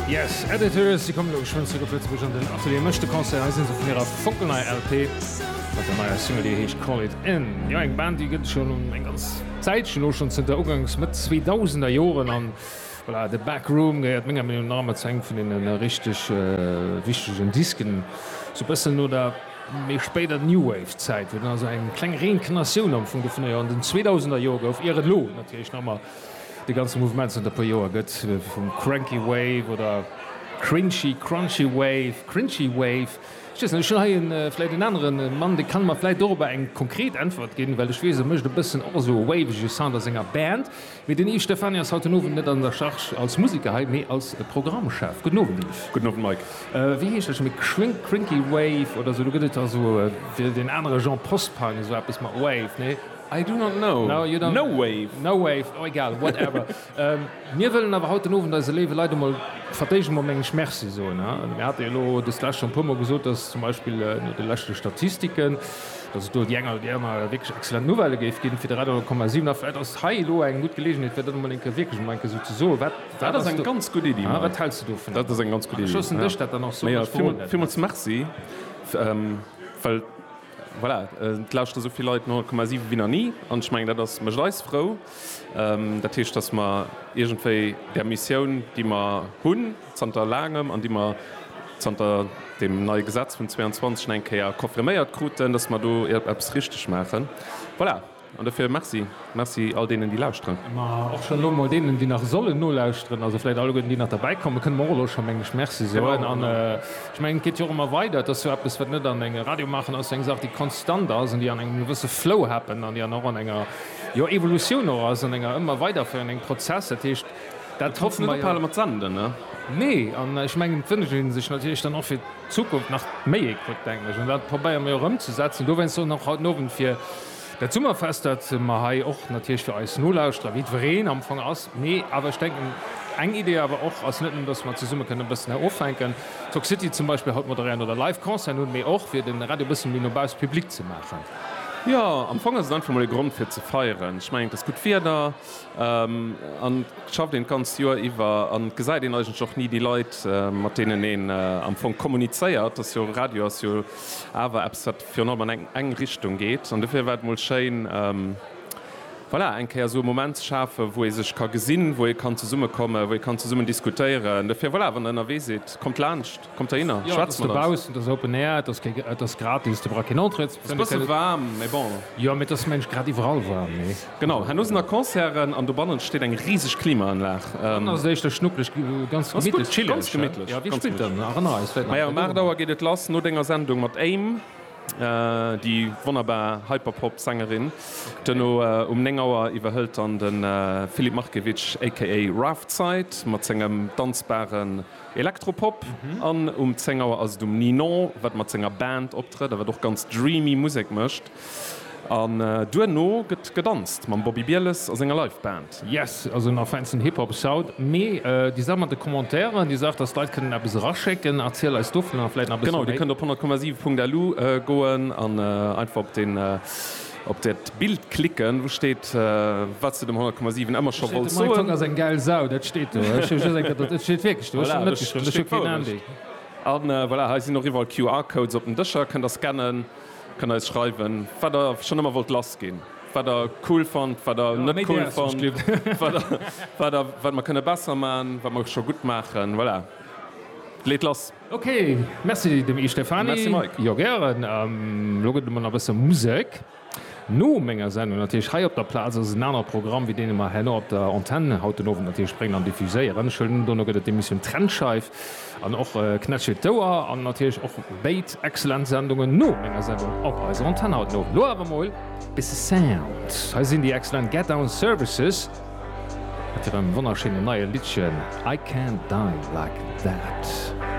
Yes Editors, déi kommen elo geschwënn zeréck op Lëtzebuerg an den Atelier Mësch de Concert. Hei sinn se vun hirer fonkelneier LP mat der neier Single, déi heescht Call It In. Jo, eng Band, déi gëtt et schonn eng ganz Zäitchen, elo schonn zënter uganks Mëtt zweedausender Joren. An voilà, The Back Room gehéiert menger Meenung nach ëmmer zu engem vun deene richteg wichtegen Disken, sou e bëssen no der méi spéider New Wave Zäit, wou dann also eng kleng Reinkarnatioun am Fong dovunner jo an den zweedausender Jore gouf, ier et elo natierlech nach ëmmer De ganze Mouvement zanter e puer Joer gëtt vum Cranky Wave oder Cringy, Crunchy Wave, Cringy Wave, ech weess net, ech hunn hei e vläit en anere Mann, dee kann mer vläit dorobber eng konkret Äntwert ginn, well ech weess, e mécht e bëssen och esou e wavege Sound a senger Band. Mee den Yves Stephany ass haut den Owend net an der Charge als Museker hei, mee als Programmchef. Gudden Owend, Yves. Gudden Owend, Mike. Wéi heescht dat scho méi? Crinky, Crinky Wave oder esou? Do gëtt et also fir deen anere Genre Post-Punk esou eppes mat Wave, nee? I do not know. No, you don't. No wave. No wave. Oh, egal, whatever. Mir wëllen awer haut den Owend eise léiwe Leit emol vertégen mam Mengesch Merci soen. Mir hate jo elo dëst lescht schonn e puermol gesot, dass zum Beispill no de leschte Statistiken, dass et do déi eng oder déi aner wierklech exzellent Nouvelle géif ginn fir de Radio 10,7. A vläicht ass hei elo eng gutt Geleegenheet, fir dat emol eng Kéier wierklech emol eng Kéier esou ze soen. Wat, wat ass do. Dat ass eng ganz gutt Iddi, Mike. Wat häls de dovun? Dat ass eng ganz gutt Iddi. An ech loossen dech dat dann och soen. Mä jo, villmools Merci, well. Voilà, et lauschteren esou vill Leit 100,7 wéi nach ni, an ech mengen, dat ass, mécht eis frou. Dat heescht, dass mer iergendwéi där Missioun, déi mer hunn zanter laangem an déi mer zanter deem neie Gesetz vun 22 nach eng Kéier confirméiert kruten, dass mer do eppes richtig maachen. Voilà. An dofir Merci. Merci all deenen, déi lauschteren. Mä och schonn elo mol deenen, déi nach sollen nolauschteren, also vläicht alleguerten, déi nach derbäikommen, kënne mer och elo scho, meng ech, Merci soen. An ech mengen, et geet jo och ëmmer weider. Et ass jo eppes, wat net an eng, Radio maachen ass jo eng Saach, déi konstant ass an déi an engem gewësse Flow happen an déi an och an enger, jo, Evolutioun och ass, an enger ëmmer weiderféieren, engem Prozess. Dat heescht, dat hoffe mer jo. Net ophale mat senden, ne? Nee. An ech mengen, et wënscht ee sech natierlech dann och fir d'Zukunft nach méi Écoute, mengen ech. An dat probéiere mer jo och ëmzesetzen. Dowéinst och nach haut den Owend, fir Dat Summerfest, dat mer hei och natierlech fir eis Nolauschterer, jiddwereen am Fong ass, mee awer ech denken, eng Idee awer och ass, net nëmmen datt mer zesumme kënnen e bëssen hei offänken, Talk City zum Beispill haut moderéieren oder live Concerten hunn, mee och fir de Radio e bëssen méi no bausse public ze maachen. Jo, am Fong ass et einfach mol e Grond fir ze feieren. Ech mengen, et ass gutt Wieder an et schafft een d'ganzt Joer iwwer an et gesäit een eigentlech och ni déi Leit, mat deenen een am Fong kommunizéiert. Dass jo Radio ass jo awer eppes wat. virun allem an eng Richtung geet an dofir war et mol schéin voilà eng Kéier esou e Moment ze schafen, wou ee sech ka gesinn, wou ee kann zesummekommen, wou ee kann zesummen diskutéieren. Dofir voilà, wann der ënnerwee sidd, kommt laanscht, kommt heihinner, Jo, et ass dobaussen, et ass Open Air, et ass kee, et ass gratis, de brauch keen Entrée ze. Et ass e bësse waarm, mee bon. Jo, mee et ass mensch grad iwwerall waarm, nee? Genau, herno sinn da Concerten an dobannent steet eng rieseg Klimaanlag. Dann ass et éischter schnucklech, ganz gemittlech, chilleg. Ja, wie spillt dann? Erënner eis vläit nach. Majo, ëm 8 Auer geet et lass, no denger Sendung mat Aim, déi wonnerbar Hyperpop Sängerin. Duerno um 9 Auer iwwerhëlt dann de Filip Markiewicz aka Raf d'Zeit mat sengem danzbaren Elektropop an um 10 Auer ass et um Ninon, wat mat senger Band optrëtt a wat och ganz dreamy Musek mécht. An duerno gëtt gedanzt mam Bobby Bieles a senger Live Band. Yes, also nach feinsten Hip Hop Soud. Mee déi Saach mat de Commentairen, déi Saach dass d'Leit kënnen eppes eraschécken, erziel eis dovunner vläit nach e bësse méi. Genau, dir kënnt op 100,7.lu goen an einfach op den, op dat Bild klicken wou steet wat s de dem 100,7 ëmmer scho wollts soen. Hei steet, de MyTalk ass eng gäil Sau, dat steet do. Ech hu just eng Kéier, et steet wierklech do, ech hunn net geschriwwen, ech hu keen Ahnung. An voilà, hei sinn och iwwerall QR Codes op den Dëscher, kënnt der scannen. Kënnt eis schreiwen, wat der schonn ëmmer wollt lass ginn, wat der cool fannt, wat der net cool fannt, wat mer kënne besser maachen, wat mer scho gutt maachen. Voilà, leet lass! Ok, merci dem Yves Stephany. Merci Mike. Jo gären. Elo gëtt et emol nach e bësse Musek no menger Sendung. Natierlech hei op der Plaz ass et en anere Programm wéi deen, dee mer herno op der Antenn haut den Owend natierlech bréngen an diffuséieren. Ech hëllen un, dono gëtt et d'Emissioun Trennscheif. An och Knätsch hiert d'Ouer an natierlech och béid excellent Sendungen no menger Sendung op eiser Antenn haut no. Lo awer mol bisse Sound. Hei sinn déi excellent Get Down Services mat hirem wonnerschéinen neie Liddchen I Can't Die Like That.